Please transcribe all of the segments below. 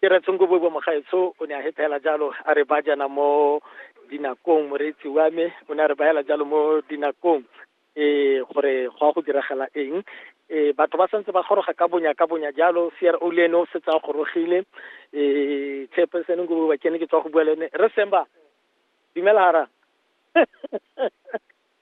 Ke re Tsongoboibo Mogaetsho o ne a hepela jalo a re ba jana mo dinakong moreetsi wa me o ne a re baela jalo mo dinakong eh gore go a go diragala eng eh batho ba santse ba goroga ka bonya ka bonya jalo CRO le ene o setse a gorogile eh chairperson Ngoboibo ke ne ke tswa go bua le ene re semba dumela hara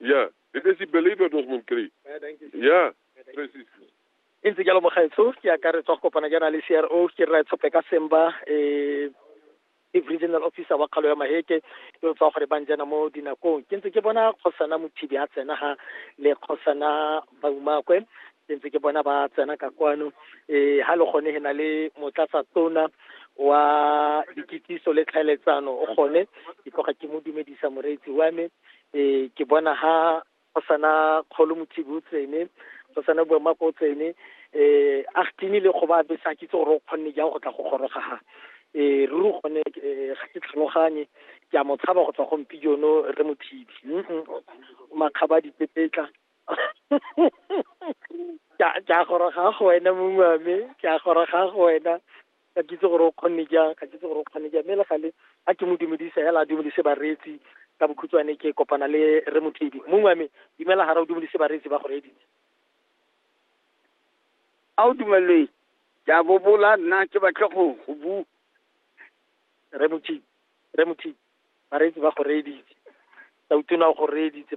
Yeah, it is the believer dat moet kry. Yeah, precies. e ntse jalo mogaetsho ke akaretswa go kopana jaana le cro ke rra tshope ka semba um ke regional officer wa kgalo ya maheke yo tswa gore bang jana mo dinakong ke ntse ke bona kgosana mothibi a tsena ga le kgosana baumakwe ke ntse ke bona ba tsena ka kwano um ga le gone he na le motlatsa tona wa dikitsiso le tlhaeletsano o gone ke tloga ke mo dumedisa moreetsi wa me e ke bona ha go sana kgolo mothibi o tsene go sana bua mako o tsene eh a gtini le go ba be sa kitse gore o kgonne jang go tla go goroga ha eh ruri gone eh, ga ke tlhaloganye ke a mo tshaba go tswa go mpi jono re mothibi makgaba dipepetla ke a goroga go wena mongwe wa me ke a goroga go wena ka ke itse gore o kgonne jang ka ke itse gore o kgonne jang mme le gale a ke mo dumedisa hela a dumedise bareetsi ka bokhutshwane ke kopana le re mothedi mongwe wa me dumela gara o dumedise bareetsi ba go reeditse a o dumelele ke a bobola nna ke batle go go bu re mothedi re mothedi bareetsi ba go reeditse sa utona go reeditse